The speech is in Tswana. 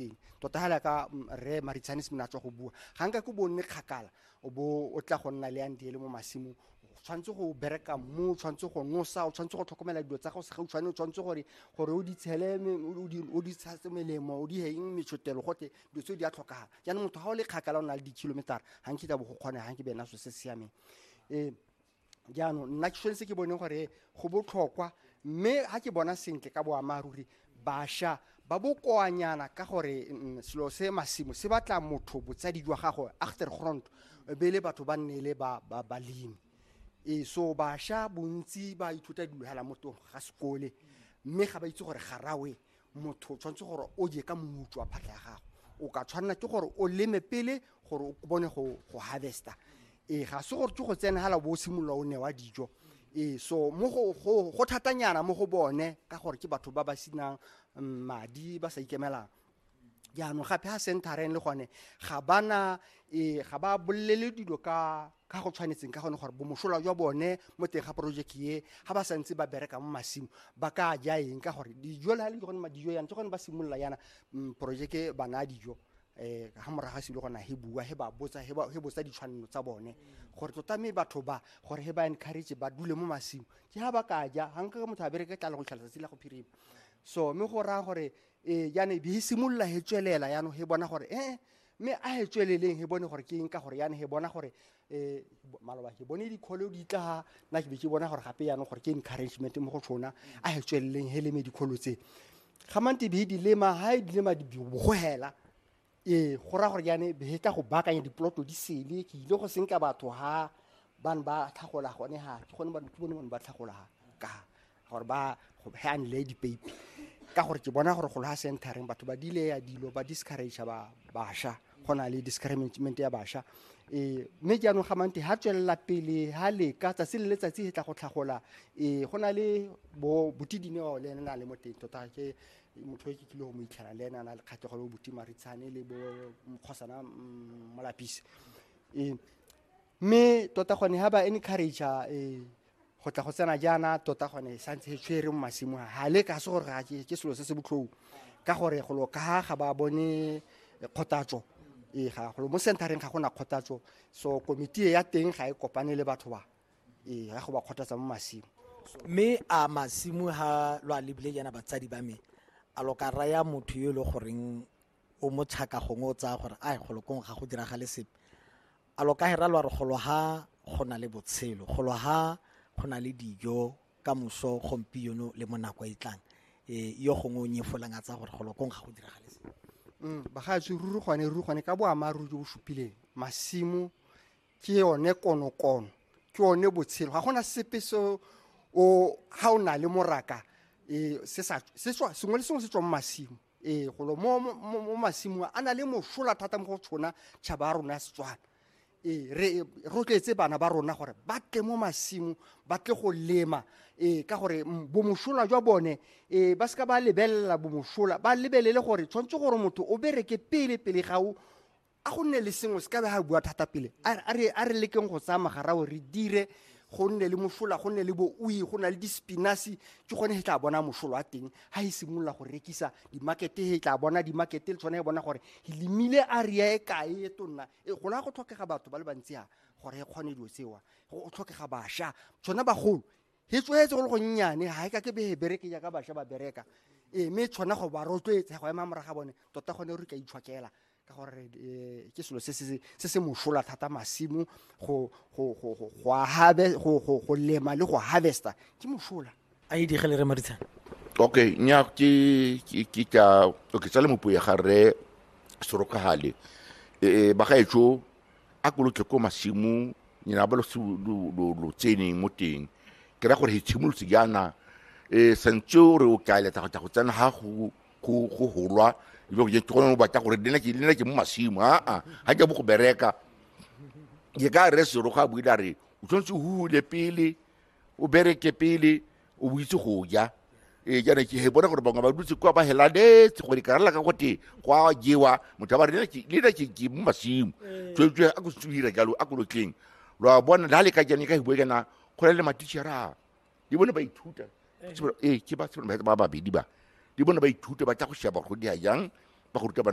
teng tota ga laka rre maritshane se tswa go bua ga nka ko bonne kgakala o bo o tla go nna le andiele mo masimong tshwanetse go bereka mo tshwanetse go nosa o tshwanetse go tlhokomela dilo tsa gago se gautshwane o tshwanetse gore gore o di tshele o di tshase melemo o di heng metshotelo gote dilo tseo di a tlhokagala jaanong motho ga o le kgakala o na le di-kilometera ga nkita bo go kgone ga nke bena so se siameng um jaanong nna ke tshwanetse ke bone gore go botlhokwa mme ga ke bona sentle ka boammaaruri basha ba bokoanyana ka gore mm, selo se masimo se batla motho botsadi jwa gago achtergrond e be le batho ba nne le ba- ba- balemi ee so basha bontsi ba ithuta dilo hela mo tong ga sekole mme ga ba itse gore garawe motho o tshwanetse gore o je ka moutswa wa phatlha ya gago o ka tshwanela ke gore o leme pele gore o bone go harvesta ee ga se gore ke go tsena fela bo o simolola o newa dijo ee so mo go thatanyana mo go bone ka gore ke batho ba ba senang mm, madi ba sa ikemelang jaanong gape ga centereng le gone ga bana ee ga ba bolelele dilo ka ka go tshwanetseng ka gone gore bomosola jwa bone mo teng ga project ye ga ba santse ba bereka mo masimo ba ka ja eng ka gore dijo le ga le gone madijo yana ke gone ba simolola yana mm, projeke bana dijo eh ha moraga se le gona he bua he ba botsa he ba he botsa ditshwanelo tsa bone gore tota me batho ba gore he ba encourage ba dule mo masimo ke ha ba ka ja ha nka motho a bereke tla le go tlhalosa tsela go phirima so me go ra gore eh yana e be e simolola he tswelela yana he bona gore eh, eh mme a e tsweleleng he bone gore ke eng ka gore yana he bona gore um maloba ke bone dikgolo di tla nna ke be ke bona gore gape yanong gore ke encouragement mo go tshona a e tsweleleng he leme dikgolo tse ga mante be di lema ga e dilema bogogela ee go raya gore yane be tla go baakanya dipoloto di sele ke ile go senka batho ga bane ba tlhagola gone ga ke gone ke bone bone ba tlhagola ka gore ba hand le dipeipi ka gore ke bona gore go loha centering batho ba dile ya dilo ba discourage ba basha go na le discrimination ya basha e mme jaanong ga mante ha tswelela pele ha le ka tsatsi le letsatsi he tla go tlhagola e go na le bo botidine wa le na le mo teng tota ke motho e ke kile go mo itlhela le ena na le kgatlhego le botima ritshane le bo mokgosana mm, molapisi e mme tota gone ha ba encourage e go tla go tsena jaana tota gone sa ntse e tshwere mo masimo a ga le ka se gore ga ke selo se se botlhou ka gore golo ka ga ba bone kgothatso ee ga golo mo centereng ga go na kgothatso so komiti ya teng ga e kopane le batho ba ee ya go ba kgothatsa mo masimo mme a masimo ha lo a lebile jaana batsadi ba me a lo ka raya motho yo e le goreng o mo tshaka gongwe o tsaya gore a golo kong ga go diragale sepe a lo ka hera lo re golo ha go na le botshelo golo ha go na le dijo ka moso gompieno le mo nako e tlang e yo gongwe o nyefolang a tsaya gore golo kong ga go diragale sepe mm, bagaetsho ruri gone ruri gone ka boammaaruri jo bo supileng masimo ke yone konokono ke yone botshelo ga gona sepe se o ga o na le moraka e, sengwe le sengwe se tswa mo masimo ee golo mo masimong a na le mosola thata mo go tshona tšhaba ya rona ya setswana ee re rotloetse bana ba rona gore ba tle mo masimo ba tle go lema ee ka gore bomosola jwa bone ee ba seka ba lebelela bomosola ba lebelele gore tshwanetse gore motho o bereke pele pele ga o a go nne le sengwe se ka be ga bua thata pele a re lekeng go tsaya magarao re dire go nne le mosola go nne le boui go na le dispinasi ke gone he tla bona mosolo a teng ha e simolola go rekisa dimakete he tla bona dimakete le tshwane e bona gore e lemile area e kae e tonna e go la go tlhokega batho ba le bantsi a gore e kgone dilo tsewa go tlhokega basha tshwana bagolo he tswetse go le go nnyane ha e ka ke be he bereke jaaka basha ba bereka e mme tshwana go ba rotloetsa go ema moraga bone tota gone re ka itshwakela ka gore eh, ke selo se se mosola thata masimo go lema le go harvesta ke mosola a e digele re maritshana okay nya ke ke ka okay tsale mopo ya gare sorokagale eh, eh ba gaetsho a ko lotle ko masimo nyina ba lo lo tseneng mo teng ke ra gore he tshimolotse jaana eh santse o re o ka eletsa go tla go tsena ga go go go holwa e be go je ke gone o batla gore le nna ke le nna ke mo masimo aa ga ke bo go bereka ke ka re sero ga buile a re o tshwanetse o hule pele o bereke pele o bo itse go ja ee jaana ke he bona gore bangwe ba dutse kwa ba helaletse gore ka rela ka gote kwa jewa motho a ba re "Nna ke- le nna ke ke mo masimo tswetswe a ko se dira jalo a kolotleng lo a bona la le ka jane ka hibo jana go na le matitšhera di bone ba ithuta ee ke ba ba babedi ba di bone ba ithuta ba tla go sheba gore go dia jang ba go ruta bana